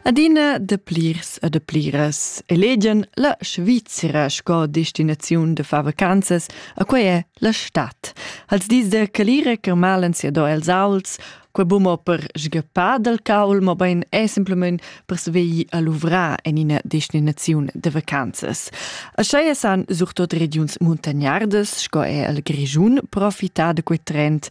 Adina de plirs e de pliras elegian la Svizzera sco destinaziun de far vacanzas, a quei è la stat. Als dis de calira che malen sia do els auls, quei bumo per sgappar dal caul, mo bein è simplement per sveglio a luvrar en ina destinaziun de vacanzas. Așa san surtot regiuns muntagnardas, sco è il Grischun, profitar de quei trend,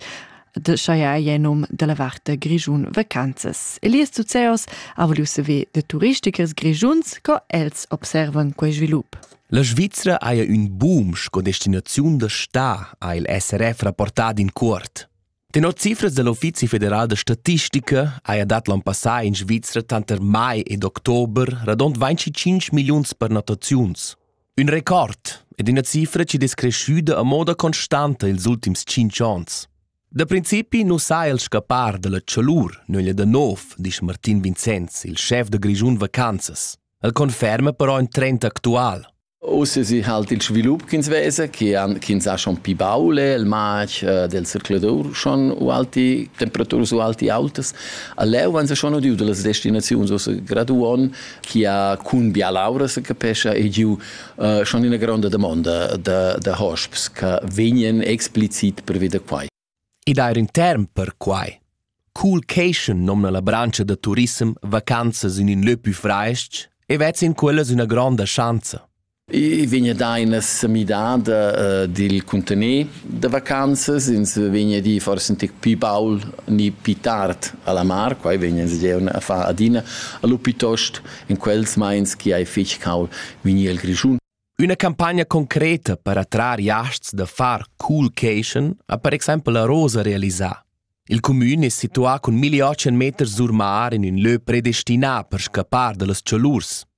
de chaia ei num dalla varte Grischun vacanzas. Elias Zuzeos ha voliu saver de turistichers grischuns, co els observan quei svilup. La Svizzera haja ün boom sco destinaziun da sta, ha il SRF rapportà in cuort. Tenor cifras dell'Uffizi federal da statistica haja dat l'on passà in Svizzera tanter mai ed october radund 25 milliuns pernottaziuns. Ün record ed üna cifra chi es creschüda a moda constanta ils ultims tschinch ons. Da principi nu sa el scappar da la chalur nöglia da nov, disch Martin Vincenz, il schef da Grischun Vacanzas. El conferma però ün trend actual. Uss si halt il svilup ch'ins vesa, che han, ch'ins ha schon pi baule, il matg äh, del circulatur schon ualti, temperaturas ualti autas. A leu han sie schon udiu dalle destinazioni, also graduon, chi ha cun bialaura se capescha e giu uh, schon ina gronda domanda da, da hosps che vegnan explicit pervi da quai. Ed eir in term per quai. Coolcation nomna la brancia da turism vacanzas in in lö pü fraesc e vezz in quellas üna gronda schanza. I vegna dà ina semidada uh, dil cuntener da vacanzas, ins vegna a dir forse antic pi baul ni pi tard alla mar, quai vegna ins geu a far adina, allo piuttost in quels meins chi hai fich cau vegni el Grischun. Üna campagna concreta per attrar jasts da far coolcation ha per exempel la Rosa realisà. Il cumün è situà cun 1800 meters sur mar in ün lö predestinà per scappar da las chalurs.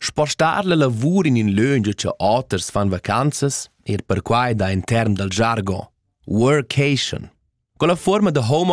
Spostar la lavur in in löngia cha oters fan vacanzas, eir perquai da in term dal jargon, workation. Quella fuorma da home